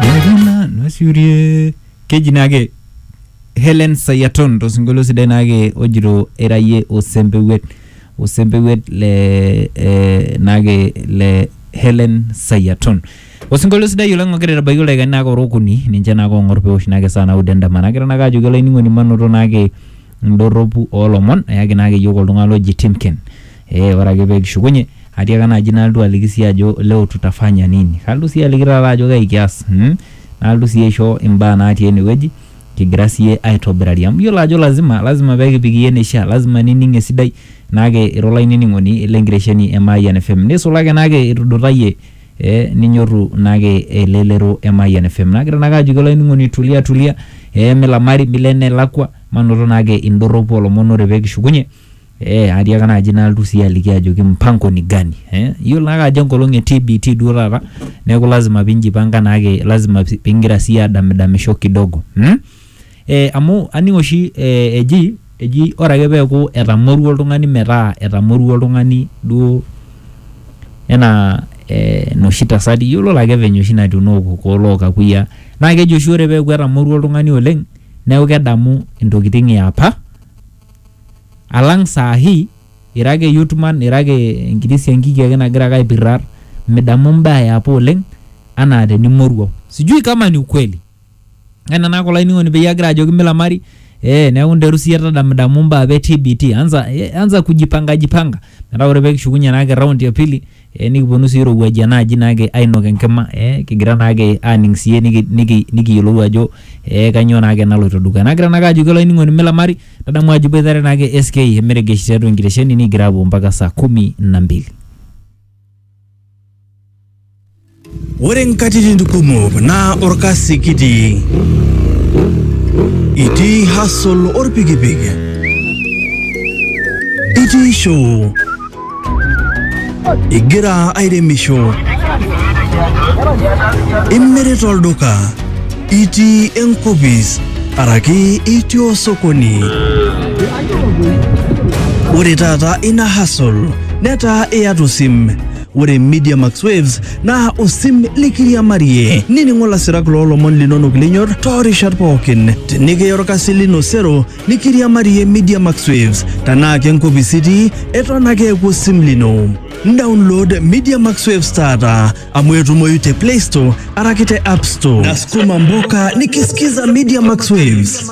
Nena nasiurie keji naake Helen Sayaton tosinkolio sidai naake ojito erayie osempewuet osempewuet le eh, naake le Helen Sayaton osinkolio sidai oleng ogira aitabaiki ildaikani naake ora okuni ninche naake ong'or peosh naake saa naudo endama nagira naake ajoki olainining'oni manoto naake indorropu olomon eyaki naake iyiok oltung'ani loji Timken Ee ore ake pee kishukunye atiaka naaji nalotu aliki sii ajo leo tutafanya nini, kalotu sii aliki taata ajo kai kias mm, nalotu sii aisho imbaa natii ene wueji kigira sii aitobirari amu iyiolo ajo lazima lazima pee kipik iyie eneishaa, lazima nining' esidai naake ira olainining'oni le nkitesheni e Mayian FM. Nisulaki naake itudutayie ee ninyorru naake elelero e Mayian FM. Nagira naake ajoki olainining'oni tulia tulia ee milamari milo enelakua manoto naake indorropu oo lomon ore pee kishukunye Eh, atiaka naaji nalotu sii aliki ajoki mpango ni gani eh? iyiolo naake ajo enkolong e TBT duo taata neeku lazima pinjipanga naake lazima si- pingira sii adamidamisho kidogo hmm? eh, amu aning oshi eh, eji eji ore ake peeku etamorua oltung'ani metaa etamorua oltung'ani duo enaa eh, noshi tasati iyiolo lake venye oshi natiu nookokoo lookakuyia naa keji oshi ore peeku etamorua oltung'ani oleng neeku kedamu intokiting eapa alang saa hii ira ake youth man ira ake enkiti siankiki ake nagira ake aipirrar midamu imbaa eapa oleng anaa tenimoruau sijui kama ni ukweli ena naa kulo ainining'oni peyie agira ajoki milamari eh, neeku nteru siyie tadamidamu imbaa apa e TBT anza, eh, anza kujipanga jipanga metaa ore pekishukunye naake raundi ya pili eh, nikiponu sii irowuaji enaaji naake ainok enkima eh, kigira naake aaning siiyie niki, niki, nikiyiolou ajo eh, kanyoo naake naloito dukuya nagira naake ajoki olainining'oni milamari tadamu ajo iboitare naake SK emeregesh tiatua enkitesheni nikigira aapuo mpaka saa kumi na mbili Ore nkatitin kumok naa orkasi kitii. Itii hustle orpikipik. Itii show. Igira airemisho. Imirita olduka. Itii enkopis araki itii osokoni. Ore taata ina hustle netaa iyata osim. Ore Media Max Waves naa osim likiriamarie. Nining'o lasirak loo lomon linonok linyor too rishat pookin. Tenikiya olkasi lino sero nikiriamarie Media Max Waves. Tenaa ke nkopis itii, eton ake eeku osim lino. Download Media Max Waves taata amu etumoyu te Play Store araki te App Store. Nasukuma mboka nikisikiza Media Max Waves.